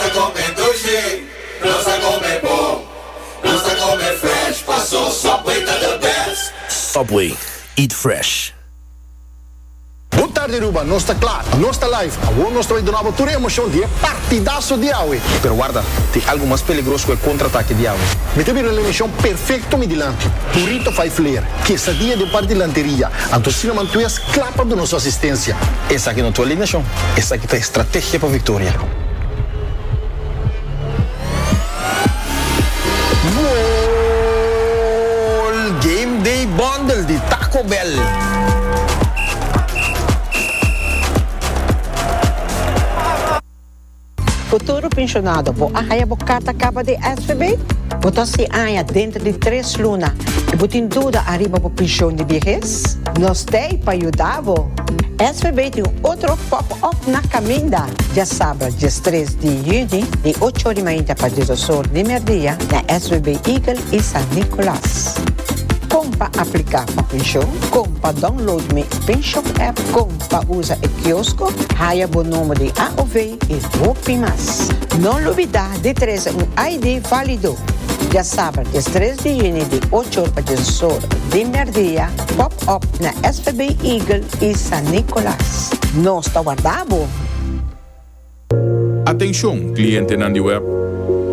Ta come dulce, nos ta come bon, nos ta come fresh, paso Subway ta the best. Subway, eat fresh. Bon tarde Aruba, nos ta klaar, nos ta live. Awor nos ta bay duna bo tur e emocion di e partidaso di awe. Pero warda, tin algo mas peligros ku e contraatake di awe. Mi ta bira na emocion perfecto mi dilanti. Burrito vijf leer, quesadilla den par dilanteria, anto Cinnamon Twist kla pa duna su asistencia. Esaki no tu alineacion, esaki ta estrategia pa victoria. Futuro Pensionado, bo a haya bo carta caba di SVB? Bo ta sin haya dentro di tres luna y bo tin duda ariba bo pension di viehes? Nos t'ey pa yuda bo! SVB tin un otro pop up na caminda dje sabra dje stres di juni di ocho di mainta pa dje dos or di merdia na SVB Eagle y San Nicolas. Con pa aplica pa pension, con pa download mi pension app, con pa usa e kiosco, haya bo nomber di AOV y hopi mas. No lubida di trece un ID valido. Dje sabra dje stres di juni di ocho or pa dje dos or di merdia Pop up na SPB Eagle y San Nicolas. Nos ta warda bo! Atencion, clientenan di web!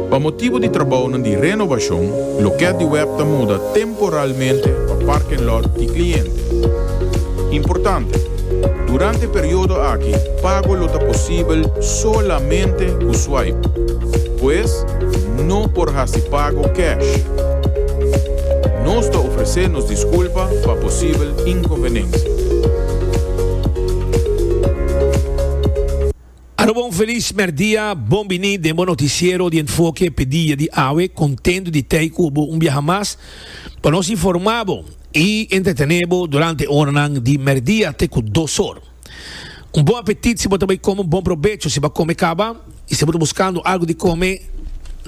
Pa motibo di trabounan di renovacion, loket di web ta muda temporalmente pa parking lot di cliente. Importante, Durante periodo aki, pago lo ta posibel solamente cu swipe. Pues, no por hasi pago cash. Nos ta ofresé nos disculpa pa posibel inconvenensia. Aroba un feliz merdia, bon bini den bo noticiero di Enfoke Pedia di awe, contento di tey cu bo un biaha mas pa nos informa bo y entretene bo durante oranan di merdia te cu dos or. Un bon apetit si bo ta bai come un bon probecho si bo come caba y si bo ta buscando algo di come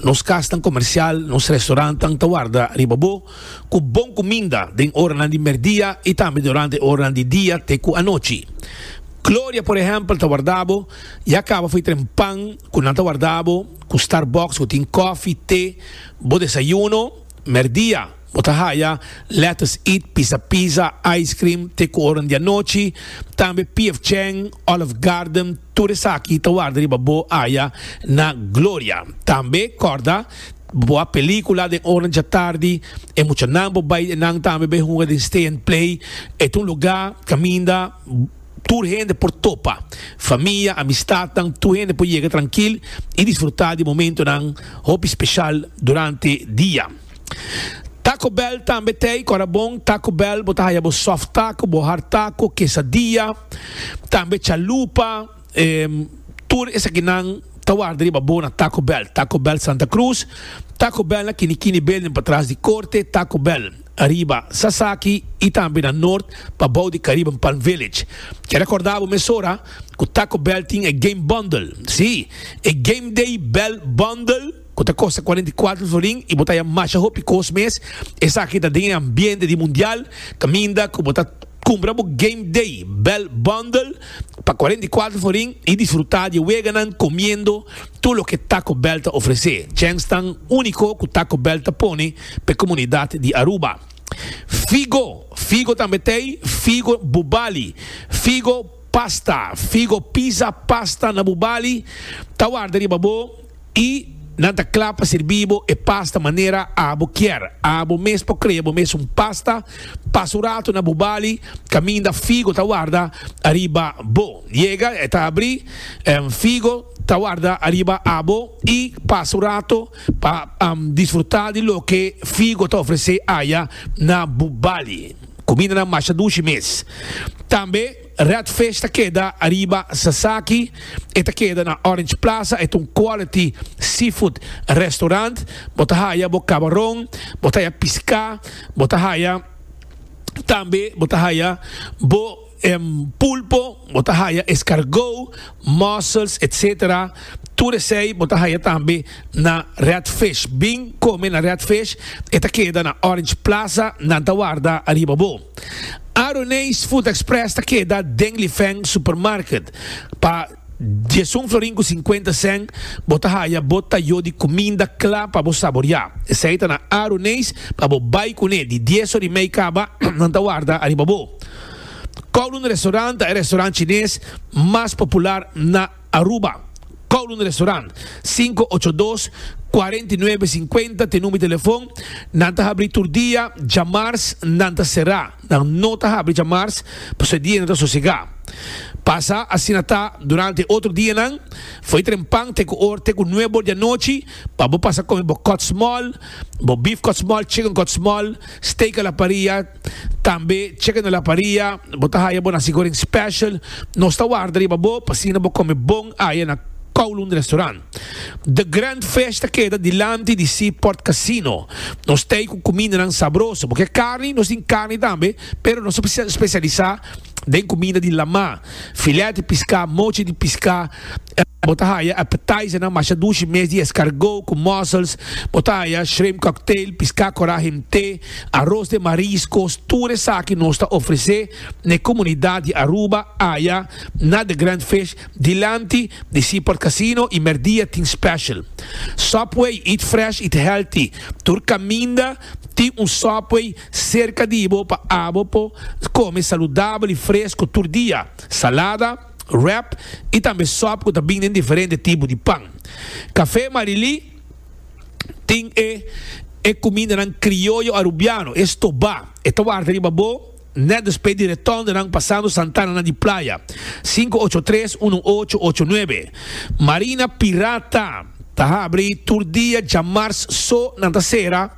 nos casnan comercial nos restaurantan ta warda riba bo cu bon cuminda den oranan di merdia y tambe durante oranan di dia te cu anochi Gloria por ehempel ta wardabo ya caba fui tren pan cu nan ta wardabo cu starbucks cu tin coffee te bo desayuno merdia. Bo ta haya lettuce eat, pisa pizza, ice cream, te ku oran di anochi, tambe PF Chang, Olive Garden, tur esaki ta warda riba bo aya na Gloria. Tambe kòrda, bo a pelikula den oran djatardi, e muchanan bo bai den nan tambe bai hunga den Stay and Play, e ta un lugá kaminda tur hende por topa, famia, amistatnan, tur hende por yega trankil i disfrutá di momentonan hopi speshal durante dia. Taco Bell tambe ta ei ku ora bon Taco Bell bo ta haya bo soft taco, bo hard taco, quesadilla, tambe chalupa, em, tur esakinan ta warda riba bo na Taco Bell. Taco Bell Santa Cruz, Taco Bell na Kini Kini Building patras di korte, Taco Bell riba Sasaki i tambe na Nort pa bou di Caribbean Palm Village. Ke rekorda bo mesora ku Taco Bell tin e game bundle, si, e Game Day Bell Bundle, cu ta costa cuarenta y cuatro florin y bo ta haya masha hopi cos mes, esaki ta den e ambiente di Mundial, caminda cu bo ta cumpra bo Game Day Bell Bundle pa cuarenta y cuatro florin y disfruta di e weganan comiendo tur loke Taco Bell ta ofrece. Chens tan unico cu Taco Bell ta pone pa e comunidad di Aruba. Figo, figo tambe t'ey, figo bubali, figo pasta, figo pizza pasta na bubali ta warda riba bo. I nan ta kla pa sirbi bo e pasta manera abo kier. Abo mes por krea bo mes un pasta. Pasa un ratu na bo bali kaminda figo ta warda ariba bo. Yega e ta abri, figo ta warda ariba abo i pasa un ratu pa disfruta di loke figo ta ofrese aya na bo bali. Kumindanan masha dushi mes. Tambe. Red Fish ta keda ariba Sasaki, e ta keda na Orange Plaza, e ta un quality seafood restaurant, bo ta haya bo cabaron, bo ta haya pisca, bo ta haya tambe bo ta haya bo pulpo, bo ta haya escargot, mussels etc. Tur esey bo ta haya tambe na Red Fish, bin come na Red Fish, e ta keda na Orange Plaza, nan ta warda ariba bo. Aroneis Food Express ta keda den Lifeng Supermarket. Pa diesun florin ku sinkuenta sèn bo ta haya bo tayó di kuminda kla pa bo saboriá. Esei ta na Aroneis pa bo bai kuné. Di dies or i mei kaba, nan ta warda ariba bo. Kowloon Restaurant ta e restaurant chines mas popular na. Aruba, Kowloon Restaurant, sinku ocho dos, kuarenta i nuebe sinkuenta t'e number di telefon, nan ta habri tur dia, djamars nan ta será, nan no ta habri djamars pasobra e dia nan ta sosegá. Pasa asina ta durante e otro dianan, fo'i trempan te ku or te ku nuebe or di anochi pa bo pasa kome bo kòtsmòl, bo beef kòtsmòl, chicken kòtsmòl, steak a la parrilla, Tambe cheque na la paria, bo ta haya bo na sigoring special, nos ta warda riba bo pa asina bo come bon aya na Kowloon Restaurant. The Grand Fish ta keda dilanti di Seaport Casino. Nos t'ey cu cumindanan sabroso, bo ke carni, nos tin carni tambe, pero nos ta specialisa den kumida di lamá, filèt di piská, mochi di piská. Bo ta haya appetizernan masha dushi mes di eskargó ku mussels. Bo ta haya shrimp cocktail, piská korá himté, aros den mariskos. Tur esaki nos ta ofresé na e komunidat di Aruba aya na The Grand Fish dilanti di Seaport Casino i mèrdia tin special Subway, eat fresh, eat healthy. Tur kaminda tin un Subway. Serka di bo pa abo por kome saludabel i fresku tur dia, salada, wrap i tambe sòp ku ta bin den diferente tipo di pan. Kafé Marilí tin e e kumindanan krioyo arubiano, e stobá. E ta warda riba bo nèt despé di retòndonan pasando santananan di playa. Sinku ocho tres uno ocho ocho nuebe Marina Pirata. Ta habri tur dia dja mars so nan ta sera,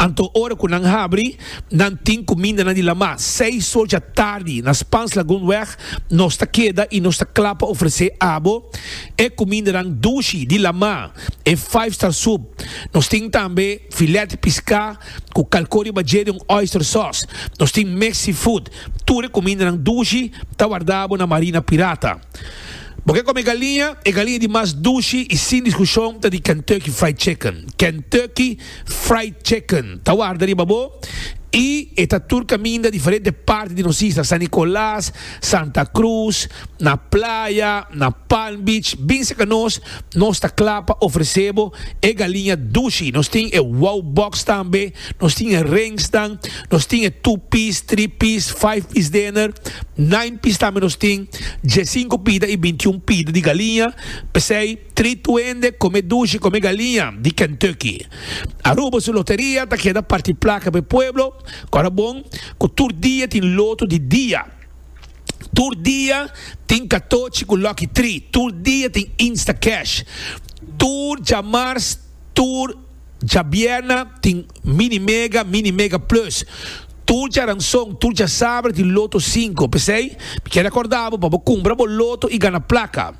anto ora cu nan habri nan tin cu minda nan di lama. Seis so dja tardi na Spaans Lagoonweg nos ta keda y nos ta cla pa ofrece abo e cumindanan dushi di lama, e five star soup. Nos tin tambe filet pisca cu calco riba dje den un oyster sauce. Nos tin mes seafood. Tur e cumindanan dushi ta wardabo na Marina Pirata. Bo ke kome galiña? E galiña di mas dushi i sin diskushon ta di Kentucky Fried Chicken. Kentucky Fried Chicken ta warda riba bo i e ta tur kaminda diferente parti di nos isla, San Nicolas, Santa Cruz, na playa, na Palm Beach, bin serka nos. Nos ta kla pa ofresé bo e galiña dushi. Nos tin e wow box tambe, nos tin e rengsnan, nos tin e two piece, three piece, five piece dinner, nine piece tambe nos tin, diesinco pida i bintiun pida di galiña. P'esei treat tu hende, kom'é dushi, kom'é galiña di Kentucky. Aruba su loteria ta keda parti plaka p'e pueblo, kòrda bon ku tur dia tin loto di dia. Tur dia tin katochi ku Lucky Tree. Tur dia tin Instacash. Tur djamars, tur djabierna tin Mini Mega, Mini Mega Plus. Tur djaranson, tur djasaber tin Loto Sinku. P'esei, mi kier akorda bo pa bo kumpra bo loto i gana plaka.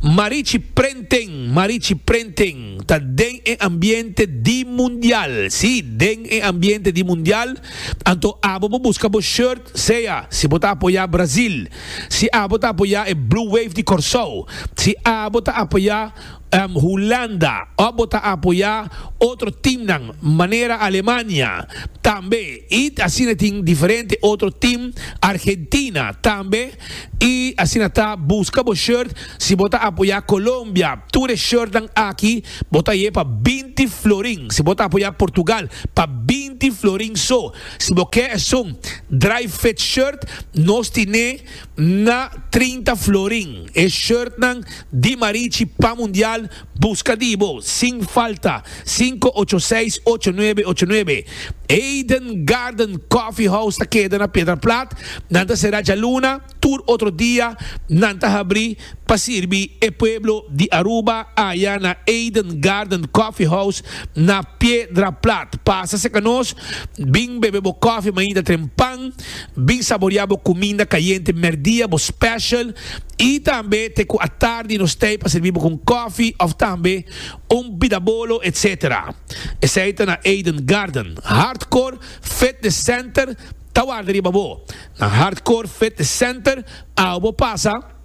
Marichi Prenten Marichi Prenten ta den e ambiente di mundial, si, den e ambiente di mundial, anto abo bo buska bo shirt sea si bo ta apoya Brasil, si abo ta apoya e Blue Wave di Corsou, si abo ta apoya Hulanda of bo ta apoya otro teamnan manera Alemania tambe y asina tin diferente otro team Argentina tambe. Y asina ta, busca bo shirt si bo ta apoya Colombia. Tur e shirtnan aki bo ta ye pa binti florin. Si bo ta apoya Portugal, pa binti florin so. Si bo ke esun dry fit shirt, nos tine na trinta florin. E shirtnan di Marichi pan mundial Busca di bo sin falta sinku ocho seis ocho nuebe ocho nuebe. Eden Garden Coffee House ta keda na Piedra Plat. Nan ta sera djaluna, tur otro dia nan ta habri pa sirbi e pueblo di Aruba aya na Eden Garden Coffee House na Piedra Plat. Pasa cerca nos, bin bebe bo coffee mainta tren pan. Bin saboria bo cuminda cayente merdia, bo special, y tambe te cu atardi nos tey pa servi bo cu un cofi of tambe un bidabolo etc. Esey ta na Eden Garden, Hardcore Fitness Center ta warda riba bo. Na Hardcore Fitness Center awo bo pasa.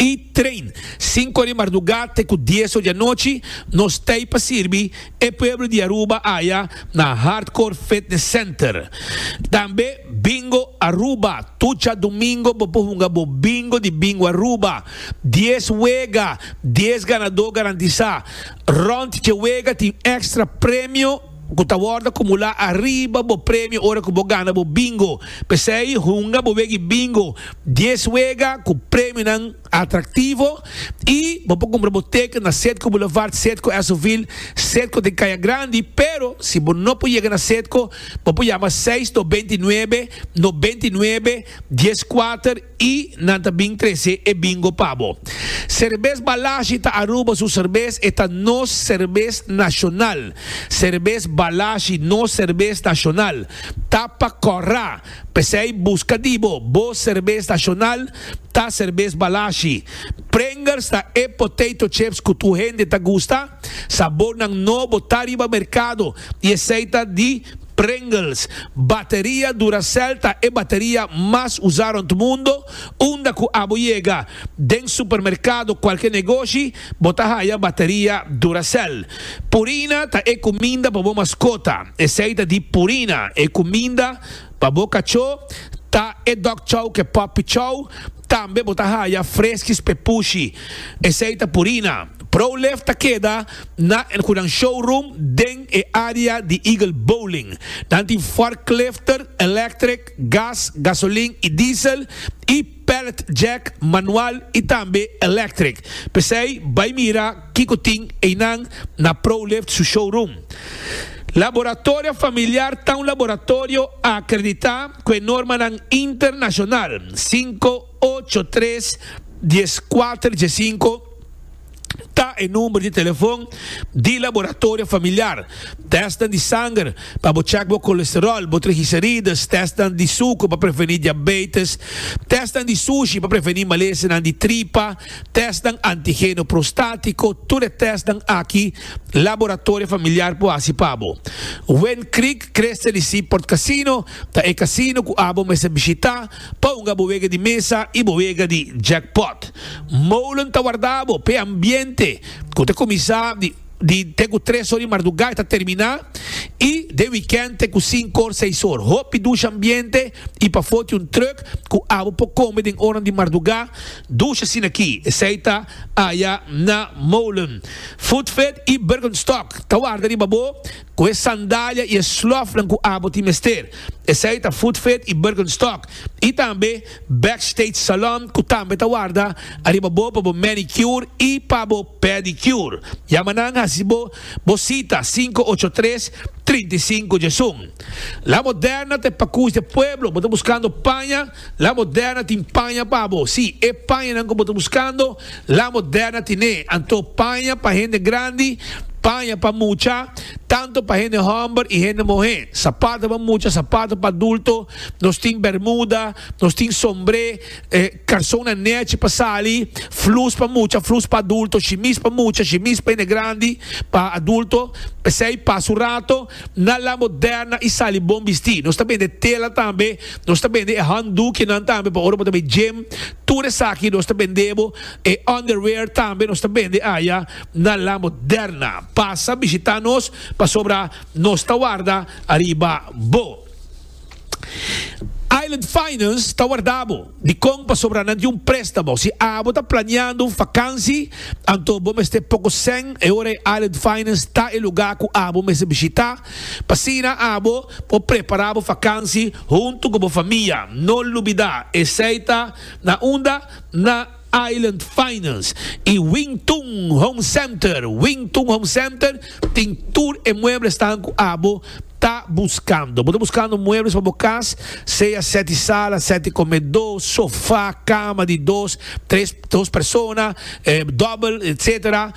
i train sinku di mardugá te ku dieso di anochi nos t'ei pa sirbi e pueblo di Aruba aya na Hardcore Fitness Center tambe Bingo Aruba tucha domingo bo por hunga bo bingo di Bingo Aruba dies wega dies ganadó garantisá rònt dje wega tin extra premio ku ta wòrdu akumulá ariba bo premio ora ku bo gana bo bingo. P'esei hunga bo wegi bingo dies wega ku premionan atraktivo i bo por kumpra bo teken na Sedco Boulevard, Sedco Esovil, Sedco den Kaya Grandi, pero si bo no por yega na Sedco bo por yama seis dos binti nuebe no binti nuebe dies kuater. I nan ta bin trese e bingo pa bo. Serbes Balashi ta Aruba su serbes, e ta nos serbes nashonal. Serbes Balashi, nos serbes nashonal, ta pa kòrra. P'esei buska di bo, bo serbes nashonal ta serbes Balashi. Pringles ta e potato chips ku tur hende ta gusta. Sabornan nobo ta riba merkado i esei ta di. Pringles, Bateria Duracell ta e bateria mas usá rònt mundo, unda ku abo yega den supermerkado kualke negoshi bo ta haya bateria Duracell. Purina ta e kuminda pa bo maskota, esei ta di Purina, e kuminda pa bo kachó ta e Dog Chow ke Puppy Chow, tambe bo ta haya Freskis Pepushi, esei ta Purina. Prolife ta keda na e kunan showroom den e área di Eagle Bowling. Nan tin forklifter, electric, gas, gasolin i diesel, i pallet jack, manual i tambe electric. P'esei bai mira kiko tin einan na ProLift su showroom. Laboratorio Familiar ta un laboratorio a akreditá ku e normanan internashonal. Sinku. Ocho tres dies kuater dies sinku ta e number di telefon di Laboratorio Familiar. Testnan di sanger pa bo check bo colesterol, bo trigicerides, testnan di suker pa preveni diabetes, testnan di sushi pa preveni malesenan di tripa, testnan antigeno prostatiko, tur e testnan aki Laboratorio Familiar por hasi pa bo. Wind Creek Crystal y Seaport Casino ta e casino cu abo mester bishita. Pa hunga bo wega di mesa y bo wega di jackpot. Molen ta warda bo p'e ambiente cu ta cuminsa di te cu tres or di mardugá y ta termina y den weekend te cu cinco or, seis or. Hopi dusha ambiente y pa foti un truck cu abo por come den oranan di mardugá, dusha asin'aki. Esey ta aya na Molen. Foodfed y Bergenstock ta warda riba bo. Cu e sandalia y e slofnan cu abo tin mester, esey ta Footfit y Birkenstock, y tambe Backstage Salon cu tambe ta warda ariba bo pa bo manicure y pa bo pedicure. Yama nan haci bo bo cita cinco ocho tres, trinta y cinco djesun. La Moderna ta e pacush de pueblo, bo ta buscando paña? La Moderna tin paña pa bo. Sí, e pañanan ku bo ta buskando, La Moderna tin'é. Anto paña pa hende grandi, paña pa mucha, tantu pa hende hòmber i hende muhé, sapatu pa mucha, sapatu pa adulto, nos tin bèrmuda, nos tin sombré, karson na nèchi pa sali, flus pa mucha, flus pa adulto, shimis pa mucha, shimis pa hende grandi, pa adulto. P'esei, pasa un rato, na La Moderna i sali bon bistí. Nos ta bende tela tambe. Nos ta bende e handdoekienan tambe pa ora bo ta bay gym. Tur esaki nos ta bende bo. E underwear tambe nos ta bende aya na La Moderna. Pasa bishita nos pasobra nos ta warda ariba bo. Island Finance ta warda bo. Dikon? Pasobra nan tin un prestamo. Si abo ta planeando un fakansi anto bo mester poko sèn e ora. Island Finance ta e lugar ku abo mester bishita. P'asina abo por prepará bo fakansi huntu ku bo famia. No lubidá, esei ta na unda? Na Island Finance i Wing Tun Home Center. Wing Tun Home Center tin tur e mueblesnan ku abo ta buskando. Bo ta buskando muebles pa bo kas, sea sèti sala, sèti komedó, sofá, kama di dos, tres, dos persona, dòbel, etsetera.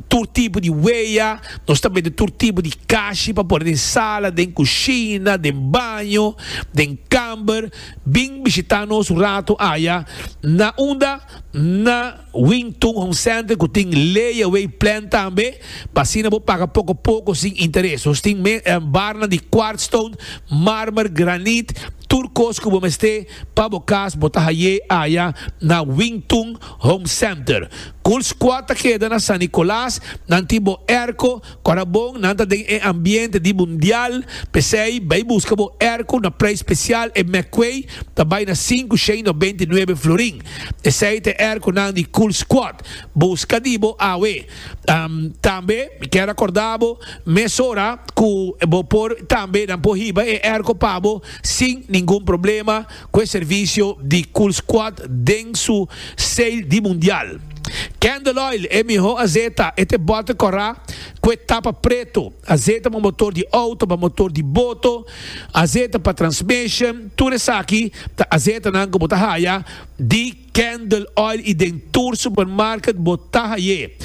tur tipo di wea, nos ta mete tur tipo di kashi pa pone den sala, den kushina, den baño, den kamber, bin bishita nos un rato aya na unda? na Wing Tun Home Center ku tin Lay Away Plan tambe, pa asina bo paga poko poko sin interes. Nos tin mes barnan di kwartstone, marmer, granit, tur kos ku bo mester. Pa bo cas bo ta haye aya na Wingtun Home Center. Cool Squad ta keda na San Nicolas, nan tin bo airco, corabon nan ta den e ambiente di mundial, p'esey bay busca bo airco na prijs special e McQuay ta bay na sinku shei nobenti nuebe florin. Esey ta e airco nan di Cool Squad. Busca di bo awe. Tambe mi kier a corda bo mesora cu bo por tambe nan por hiba e airco pa bo. sin ningun problema ku e servisio di Cool Squad den su sail di mundial. Candle Oil, e miho azeta, e te bòter kòrá ku e tapa pretu, azeta pa motor di outo, pa motor di boto, azeta pa transmission, tur esaki ta azetanan ku bo ta haya di. Candle Oil y den tur supermarket bo ta haye.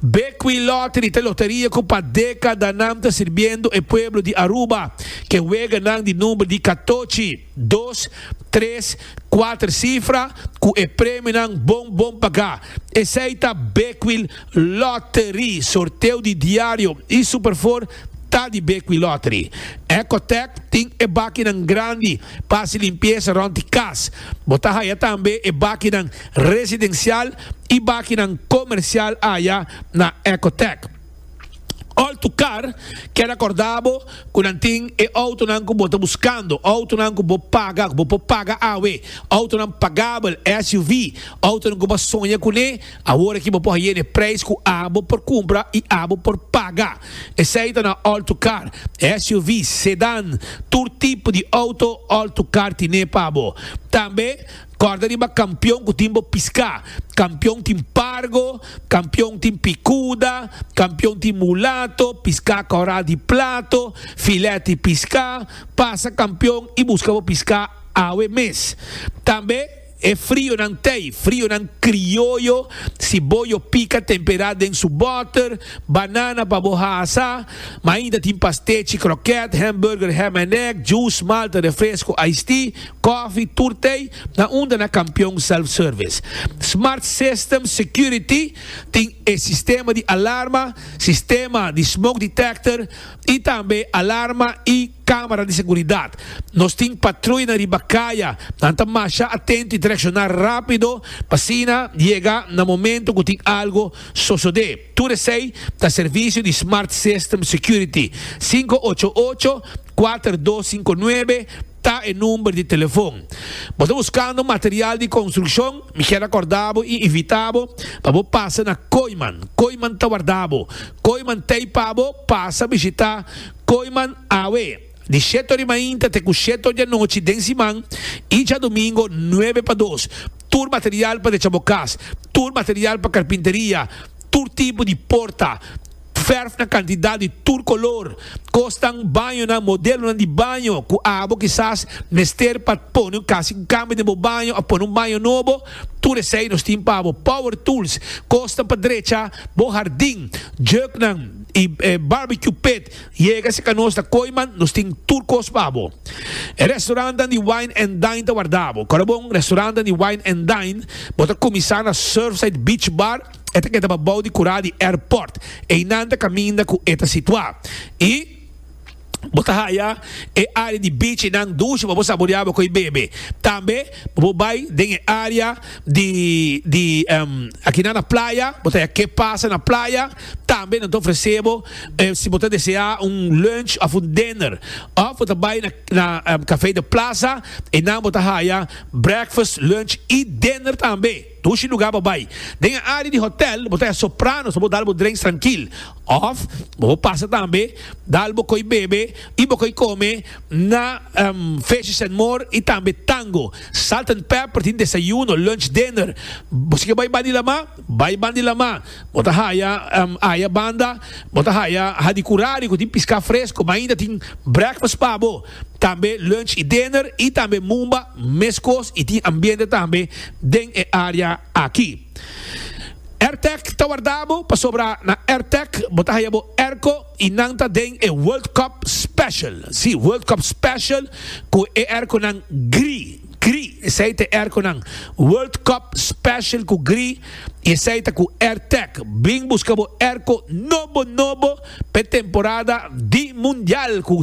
Bequi Lottery ta e loteria cu pa decadanan ta sirbiendo e pueblo di Aruba cu e weganan di number di catochi, dos, tres, cuater cifra cu e premionan bon bon paga. Esey ta Bequi Lottery. Sorteo di diario y Superfour ta di Bequi Lottery. Ecotech tin e bakinan grandi. Pa hasi limpiesa rond di kas. Bo ta haya tambe e bakinan residensial i bakinan komersial aya na Ecotech. Òl tu kar, keda kordá bo ku nan tin e outonan ku bo ta buskando, outonan ku bo paga, ku bo por paga awe, outonan pagabel, SUV, outonan ku bo a soña kuné, awor aki bo por hay'e n'e preis ku abo por kumpra i abo por paga. Esei ta na alto kar, SUV, sedan, tur tipo di auto alto kar tine pa bo. Tambe korda riba kampion ku tin bo piska, kampion tin pargo, kampion tin pikuda, kampion tin mulato, piska koral di plato, filet di piska, pasa kampion i buska bo piska awe mes. Tambe. E frionan tei, frionan krioyo, si bo yo pika tempera den su boter, banana pa bo hasa, ma ainda tin pastechi, kroket, hamburger, ham en egg, juice, malta, refresco, iced tea, kofi, tur tei, na unda na Kampion Self Service. Smart System Security tin e sistema di alarma, sistema di smoke detector, y tambe alarma y camera di seguridad. Nos tin patruyanan riba caya, nan ta masha atento y ta reacciona rapido pa asina yega na momento cu tin algo sosode. Tur esey ta servicio di Smart System Security, sinku ocho ocho, kuater dos sinku nuebe, Ta e number di telefon. Bo ta buskando material di construccion? Mi kier acorda bo y invita bo pa bo pasa na Kooiman. Kooiman ta warda bo. Kooiman t'ey pa bo pasa bishita Kooiman awe di shete ori mainta te cu shete ori anochi den siman y djadomingo nuebe pa dos. Tur material pa decha bo cas. Tur material pa carpinteria. Tur tipo di porta. Verf na kantidat di tur kolor. Kosnan, bañonan, modelonan di baño ku abo kisas mester pa pone un kasi un kambio den bo baño òf pone un baño nobo, tur esei nos tin pa bo. Power tools, kosnan pa drecha bo hardin, juknan i barbecue pit. Yega si ka nos ta koiman, nos tin tur kos pa bo. E restorannan di wine and dine ta warda bo. Kòrda bon, restorannan di wine and dine bo ta kuminsá na Surfside Beach Bar, E ta kedaba bou di kura di airport, einan ta kaminda ku e ta situá. I bo ta haya e área di beach einan dushi pa bo saboreá bo koi bebe. Tambe bo por bai den e área di di akinan na playa, bo ta haya ke pasa na playa. Tambe nan ta ofresé bo si bo ta deseá un lunch òf un dinner. Òf bo ta bai na na Café de Plaza einan bo ta haya breakfast, lunch i dinner tambe. Dushi lugar bo bai. Den e área di hotèl bo ta ya soprá nos pa bo dal bo drenks trankil. Òf bo por pasa tambe dal bo koi bebe i bo koi kome na Fishes and More i tambe Tango. Salt and Pepper tin desayuno, lunch, dinner. Bo si ke bai ban di lamá, bai ban di lamá. Bo ta haya aya banda bo ta haya Hadicurari ku tin piská fresko mainta tin breakfast pa bo. tambe lunch y dinner y tambe mumba mescos y tin ambiente tambe den e area aki. Airtech ta wardabo pasobra na Airtech bo ta haya bo airco y nan ta den e World Cup Special, si World Cup Special cu e airconan gri, gri esey ta e airconan World Cup Special cu gri y esey ta cu Airtech. Bring busca bo airco nobo nobo. p'e temporada di Mundial ku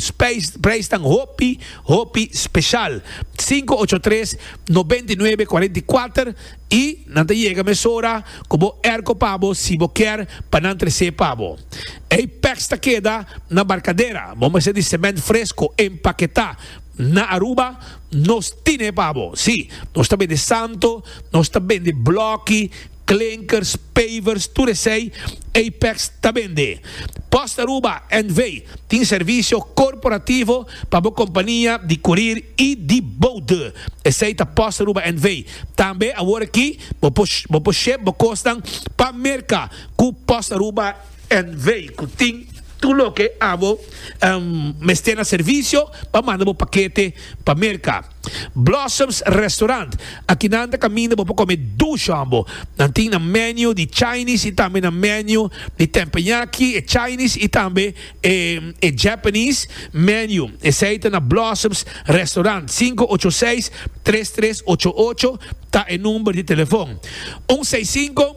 preisnan hopi hopi speshal. Sinku ocho tres nobenta i nuebe kuarenta i kuater i nan ta yega mesora ku bo erko pa bo si bo kier pa nan tres'é pa bo. Ei pèks ta keda na barkadera, bo mester di sement fresko empaketá. Na Aruba nos tin'é pa bo. Sí, nos ta bende santo, nos ta bende blòki. Klinkers, pavers, tur esei Apex ta bende. Post Aruba NV. tin servisio korporativo pa bo kompania di kurir i di boude. Esei ta Post Aruba NV. Tambe awor aki bo por bo por ship bo kosnan pa Merka ku Post Aruba NV. Ku tin tur loke abo mester na servisio pa manda bo pakete pa Merka. Blossoms Restaurant, Aki nan ta kaminda bo pa kome dush hombo. Nan tin nan menu di Chinese y tambe nan menu di Tempenyaki, e Chinese y tambe e e Japanese menu. Esey ta na Blossoms Restaurant. Sinku ocho seis tres tres ocho ocho ta e number di telefon. Un seis sinku.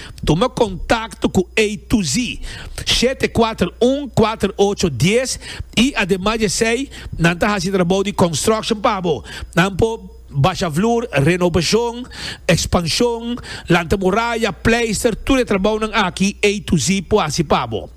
Tuma kontakto ku A to Z shete kuater un kuater ocho dies i ademas di esei nan ta hasi trabou di construction pa bo. Nan por basha vloer, renobashon, ekspanshon, lanta muraya, pleister, tur e trabounan aki A to Z por hasi pa bo.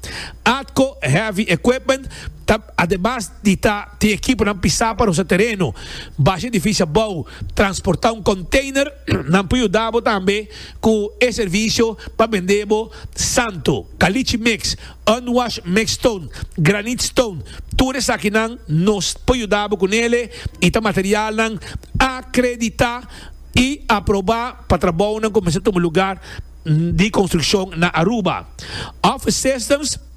Atco Heavy Equipment ta ademas di ta tin ekiponan pisá pa rosa tereno, basha edifisio abou, transportá un konteiner, nan por yuda bo tambe Cu e servicio pa bende bo santo, caliche mix, unwash mix stone, granite stone, tur esakinan nos por yuda bo cu nele y ta materialnan acredita y aproba pa trabounan cu mester tuma lugar di construccion na Aruba. Office Systems.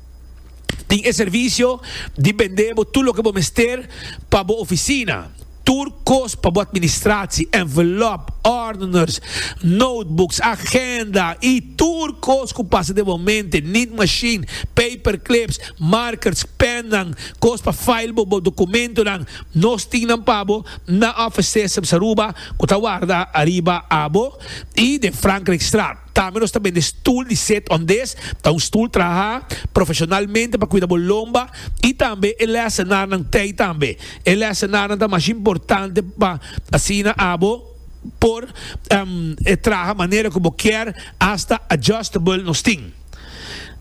Tin e servisio di bend'é bo tur loke bo mester pa bo ofisina, tur kos pa bo atministratie, envelop, ordeners, notebooks, agenda i tur kos ku pasa den bo mente, nit mashin, paperclips, markers, pennan, kos pa file bo bo dokumentonan. Nos tin nan pa bo na offices op Saruba ku ta warda ariba abo i den Frankrijkstraat. Tambe nos ta bende stul di set on des, ta un stul traha profesionalmente pa kuida bo lomba y tambe e lesenarnan tey tambe. E lesenarnan ta mas importante pa asina abo por traha manera cu bo kier, hasta adjustable nos tin.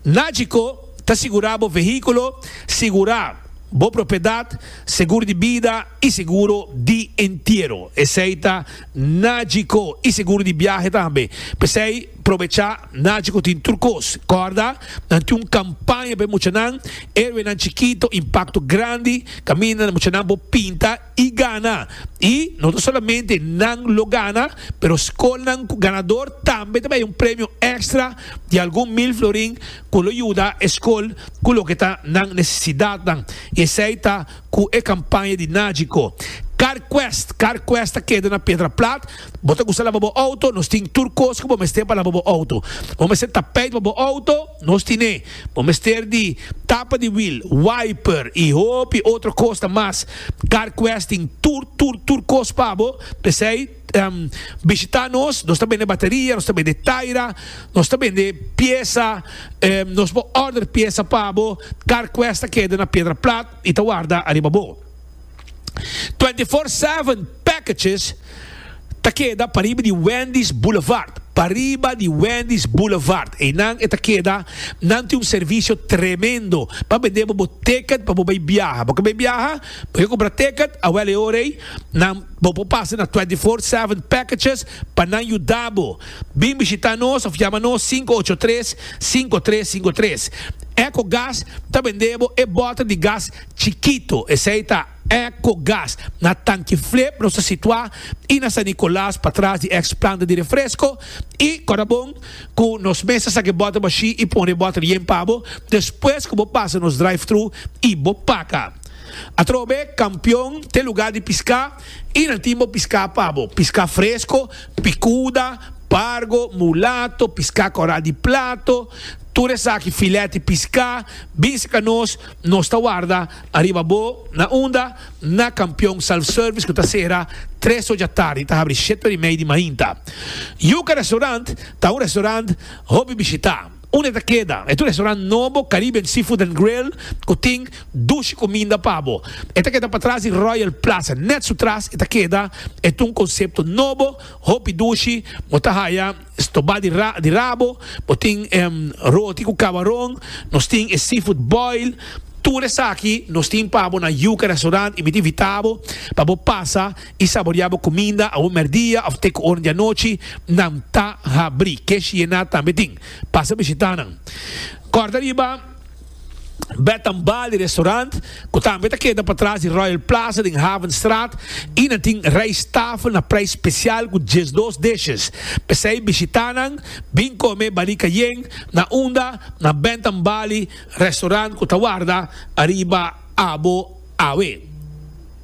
Nagico ta sigura bo vehiculo, sigura bo propiedad, segur di bida y seguro di entiero. Esey ta Nagico y seguro di biahe tambe. P'esey probecha, Nagico tin tur cos. Corda, nan tin un campaña p'e muchanan, Héroenan Chikito, Impacto Grandi, caminda na muchanan por pinta y gana. Y no ta solamente nan lo gana, pero scolnan cu ganador tambe ta bay un premio extra di algun mil florin cu lo yuda e scol cu loke ta nan necesidadnan. Y esey ta. cu e campaña di Nagico. Car Quest, Car Quest ta keda na Pedra Plat. Bo ta gusta laba bo auto? Nos tin tur cos cu bo mester pa laba bo auto. Bo mester tapijt pa bo auto? Nos tin e. Bo mester di tapa di wiel, wiper y hopi otro cosnan mas. Car Quest tin tur, tur, tur cos pa bo. P'esey. Ehm bishita nos, nos ta bende bateria, nos ta bende taira, nos ta bende piesa, ehm nos bo order piesa pa bo, car quest ta keda na Piedra Plat y ta warda ariba bo. Twenty four seven packages ta keda pariba di Wendy's Boulevard, pariba di Wendy's Boulevard, eynan e ta keda, nan tin un servicio tremendo pa bende bo bo ticket pa bo bay biaha, bo ke bay biaha? Pasobra ku bratekad a wèlè ora ei, nan bo por pasa na Twenty Four Seven Packages pa nan yuda bo. Bin bishitá nos òf yama nos sinku ocho tres, sinku tres sinku tres. Ecogas ta bend'é bo e bòter di gas chikito, esei ta Ecogas. Na Tanki Flip nos ta situá i na San Nicolas patras di èks planta di refresko i Kòrabon ku nos mes ta saka e bòter bashí i pone e bòter yen pa bo despues ku bo pasa nos drive-thru i bo paka. Atrobe kampion te luga di piská i nan tin bo piská pa bo. Piská fresko, pikuda, pargo, mulato, piská kòral di plato, tur esaki filèt di piská, bin sika nos, nos ta warda ariba bo. Na unda? Na kampion self-service ku ta sera tres ochi atardi i ta habri shete ora i mei di mainta. Yuka Restaurant ta un restaurant hopi bishitá. Un e ta keda e tu restaurant nobo Caribbean Seafood and Grill ku tin dushi kuminda pa bo. E ta keda patras di Royal Plaza. Nèt su tras e ta keda e tu un konsepto nobo, hopi dushi, bo ta haya stobá di di rabo, bo tin roti ku kabaron, nos tin e seafood boil, tur esaki nos tin pa bo na Yuca Restaurant i mi ta invitá bo pa bo pasa i saboreá bo kuminda awor mèrdia òf te ku oren di anochi, nan ta habrí. Kesh Yená tambe tin. Pasa bishitá nan. Kòrda riba Bed and Bali Restaurant, ku tambe ta keda patras di Royal Plaza den Havenstraat, i nan tin rijsttafel na prijs spesial ku diesdos dishes. P'esei bishitá nan, bin kome Bali Cayenne na unda na Bed and Bali Restaurant ku ta warda ariba abo awe.